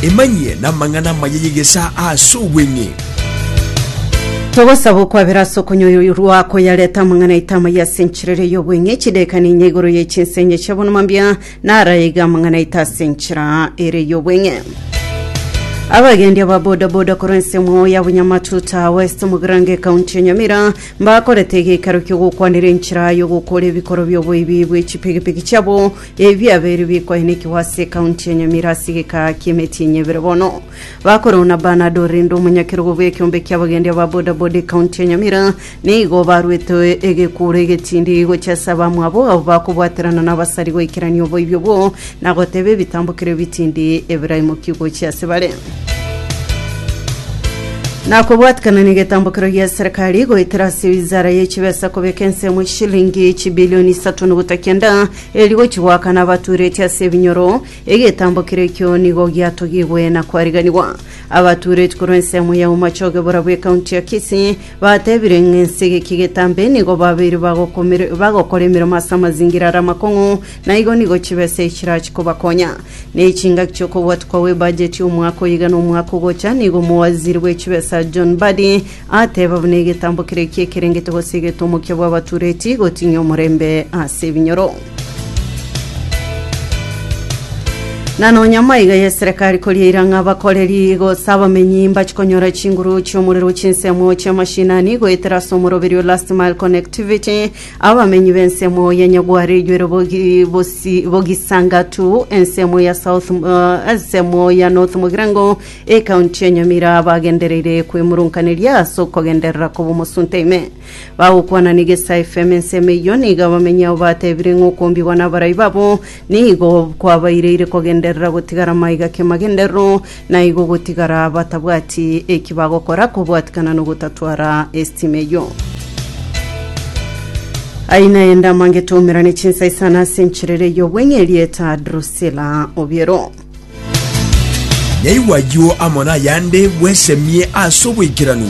Emanyie namang'ana amaya y'egesaa ase obweng'e. Togosaba okwabera ase okonyoirwa koyareta amang'ana aito amaya ase enchera eria y'obweng'e, chidaeka ninya igoro ye chinsenye chia bonuma mbia, naro aige amang'ana aito ase enchera eria y'obweng'e. Abagendi aba boda boda korwa ensemo ya Bunyamatuta West mu Grange ekaunti ya Nyamira mbakorete egeikaro ki'ogokwanera enchera y'ogokora ebikoro bi'oboibi bwe chipigipigi chiabo Ebiabeiri bikoenekigwa ase ekaunti ya Nyamira ase egekaa ki'emetienyi ebere bono. Bakorwa na Bernard Orende omonyakerogo bw'ekiombe ki'abagendia ba bodaboda ekaunti ya Nyamira nigo barwete egekuuro egetindi gochia ase abamwabo abo bakobwaterana nabasari goikerania oboibi obwo na goteba ebitambo kera ebitindi ebiraimoki gochia ase bare. Na kobwatikana negetambokero gia serikali goetera ase wizara ye chibesa kobeka ensemo chilingi chibilioni isato nogota kenda eri gochi goaka nabatureti ase ebinyoro, egetambokero ekio nigo giatogigwe na kwariganigwa. Abatureti korwa ensemo ya Umachoge bora bw'ekaunti ya Kisii batebire ng'a ense egeki getambe nigo babeire bagokora emeremo ase amazingira are amakong'u Na igo nigo chibe ase echirache kobakonya. Ne chingaki chi'okobwatwa kwa w'ebajeti omwaka oyo iga nomwaka ogocha, nigo omowaziri bw'echibesa John Mbadi ateba buna egetambo keria ki'ekerengete gose eget'omokia bw'abatureti gotinya omorembe ase ebinyoro. Na nonya maiga y'eserekari koria eira ng'a abakoreri gose abamenyi mbache konyora chinguru chi'omorero chi'ensemo chi'amashinani goetera ase omoroberio last mile connectivity, Abamenyi b'ensemo ya Nyagware ijwero bogi, bosi, Bogisangatu, ensemo ya South, uh, ensemo ya North Mogirango, ekaunti ya Nyamira bagendereire kwemurunkaneria ase okogenderera koba omosunte ime. Bagokwana n'Egesa FM ensemo eyio, nigo abamenyi abo batebire ng'a okombigwa n'abarai babo Nigo kwabaireire kogenderera gotigara maiga ki'amagenderero, na igo gotigara batabwati eki bagokora kobwatikana nogotatwara estima eyio. Ayio nayende amangete oumerane chinsa isano ase encherere y'obweng'e erieta Drusila Obiero. Naigwa ayio amo nayande bwesemie ase oboikeranu.